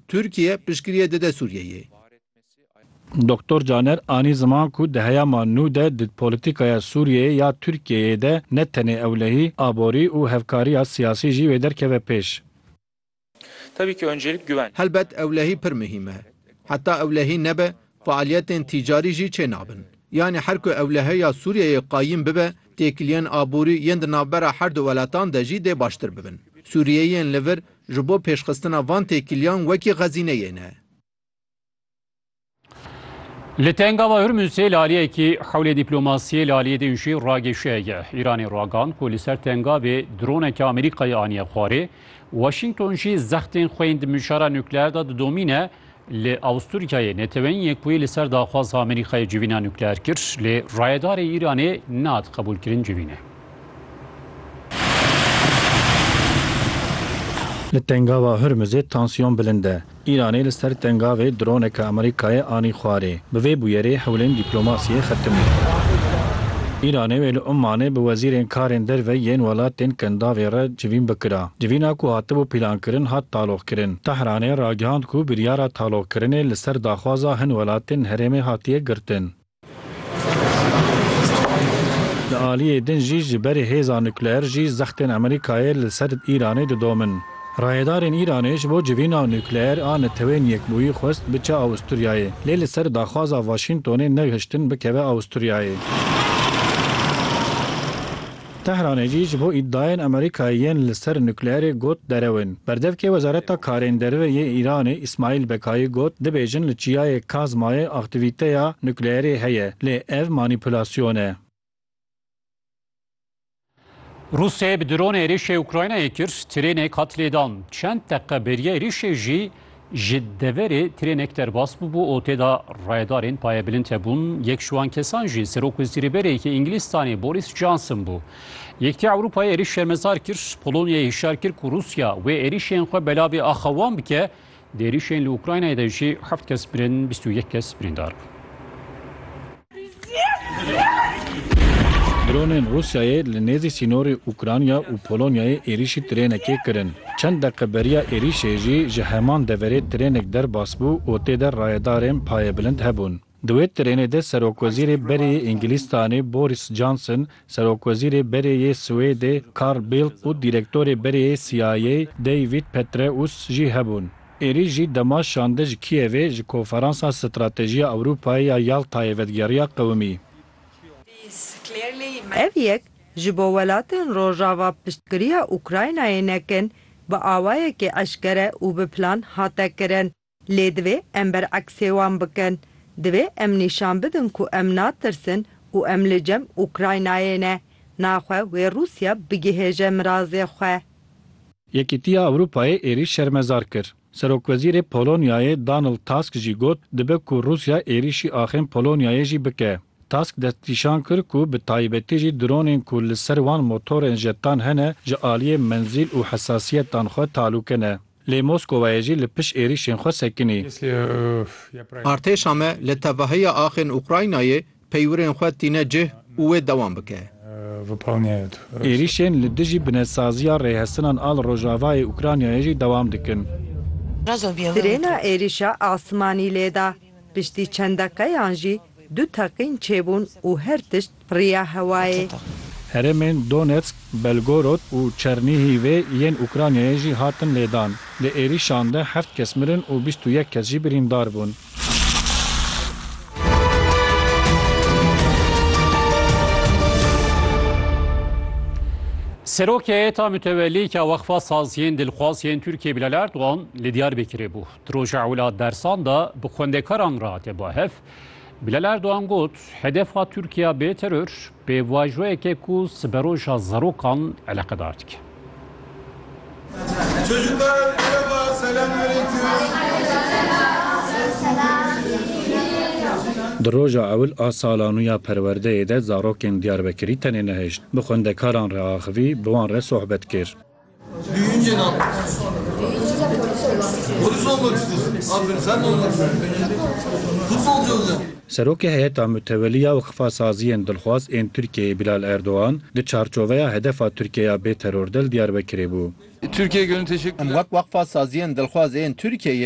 Tirkiye piştgiriyê dide Sûriyeyê. Doktor Caner anî ziman ku di heyama nû de di polîtîkaya Sûriyeyê ya Tirkiyeyê de ne tenê ewlehî, aborî û hevkariya siyasî jî wê derkeve pêş. Helbet ewlehî pir muhîm e. Heta ewlehî nebe Fealiyetên tîcarî jî çê nabin. Yanî her ku ewlehe ya Sûriyeyê qayîm bibe, têkiliyên aborî yên di navbera her du weletan de jî dê baştir bibin. Sûriyeyiyên li vir ji bo pêşxistina van têkiliyan wekî xezîneyê ne. Li Tengava Hurmûsê li aliyekî hewlê dîplomasiyê li aliyê din jî ragêşiyeke Îranê ragand ku li ser Tengavê droneke Amerîkayê aniye xwarê. Washington jî zextên xwe yên di mijara nukleer de didomîne. Li Awûstûryayê Neteweyên Yekbûyî li ser daxwaza Amerîkayê civîna nukleer kir, lê rayedarê Îranê nehate qebûlkirin civîne. Li Tengava Hurmizê tansiyon bilind e. Îranê li ser Tengavê droneke Amerîkayê anî xwarê. Bi vê bûyerê hewlên dîplomasiyê xetim in. Îranê wê li Ummanê bi wezîrên karên derve yên welatên Kendavê re civîn bikira. Civîna ku hatibû pîlankirin hat taloqkirin. Tehranê ragihand ku biryara taloqkirinê li ser daxwaza hin welatên herêmê hatiye girtin. Di aliyê din jî ji berî hêza nukleer jî zextên Amerîkayê li ser Îranê didomin. Rayedarên Îranê ji bo civîna nukleer a Neteweyên Yekbûyî xwest biçe Awûsturyayê, lê li ser daxwaza Waşîntonê nexiştin bikeve Awûsturyayê. Tehranê jî ji bo îdiayên Amerîkayê yên li ser nukleerê got derew in. Berdevkê Wezareta Karên Derve yê Îranê Îsmaîl Bekayî got, Dibêjin li Çiyayê Kazmayê aktîvîteya nukleerê heye, lê ev manîpulasyon e. Rûsyayê bi dronê êrîşê Ukraynayê kir, tirênek hat lêdan. Çend deqe bêriya êrîşê jî Ji deverê trênek derbas bûbû û tê de rayedarên payebilind hebûn. Yek ji wan kesan jî Serok Wezîrîberêyekî Îngilîztanê Boris Johnson bû. Yekîtiya Ewropayê êrîş şermezar kir, Polonyayê hişyar kir ku Rûsya wê êrîşên xwe belavê axa wan bike. Di êrîşên li Ukraynayê de jî heft kes mirin, bîst û yek kes birîndar bûn. Dronên Rûsyayê li nêzî sînorê Ukranya û Polonyayê êrîşî trênekê kirin. Çend deqe beriya êrîşê jî ji heman deverê trênek derbas bû û tê de rayedarên payebilind hebûn. Di wê trênê de Serokwezîrê Berê yê Îngilîztanê Boris Johnson, Serokwezîrê Berê yê Swêdê Carl Bildt û Dîrektorê Berê yê CIA'yê David Petraeus jî hebûn. Êrî jî dema şande ji Kîevê ji Konferansa Stratejiya Ewropayê ya Yaltayê vedgeriya qewimî. Ev yek ji bo welatên Rojava piştgiriya Ukraynayê nekin, bi awayekî eşkere û bi plan hate kirin. Lê divê em bereksê wan bikin. Divê em nîşan bidin ku em natirsin û em li cem Ukraynayê ne. Naxwe wê Rûsya bigihêje mirazê xwe. Yekîtiya Ewropayê êrîş şermezar kir. Serokwezîrê Polonyayê Donald Tusk jî got dibe ku Rûsya êrîşî axên Polonyayê jî bike. Tusk destnîşan kir ku bi taybetî jî dronên ku li ser wan motorên jetan hene ji aliyê menzîl û hesasiyetan xwe talûke ne. Lê Moskowayê jî li pişt êrîşên xwe sekinî. Artêşa me li tevahiya axên Ukraynayê Peywirên xwe tîne cih û wê dewam bike. Êrîşên li dijî binetsaziya rêhesinan a li rojavayê Ukraynayê jî dewam dikin. Sirêna êrîşa asmanî lêda. Piştî çend deqeyan jî du teqîn çêbûn û her tişt riya hewayê. Herêmên Donetsk, Belgorod û Çernîhîvê yên Ukraynayê jî hatin lêdan. Di êrîşan de heft kes mirin û bîst û yek kes jî birîndar bûn. Serokê heyeta mütevellî ke Wexfa Saziyên Dilxwaz yên Tirkiyê Bilal Erdogan li Diyarbekirê bû. Di roja ewla dersan de bi xwendekaran re hate bahev. Bilal Erdogan got hedefa Tirkiya bê teror bê vajoyeke ku siberoja zarokan eleqedar dike. Di roja ewil a sala nû ya perwerdeyê de zarokên Diyarbekirî tenê nehişt, bi xwendekaran re axivî, bi wan re sohbet kir. Serokê Heyeta Mutewelî ya Wexfasaziyên Dilxwaz ên Tirkiyeyê Bilal Erdogan di çarçoveya hedefa Tirkiye ya bê teror de li Diyarbekirê bû. Em wek Wexfasaziyên Dilxwaz ên Tirkiyeyê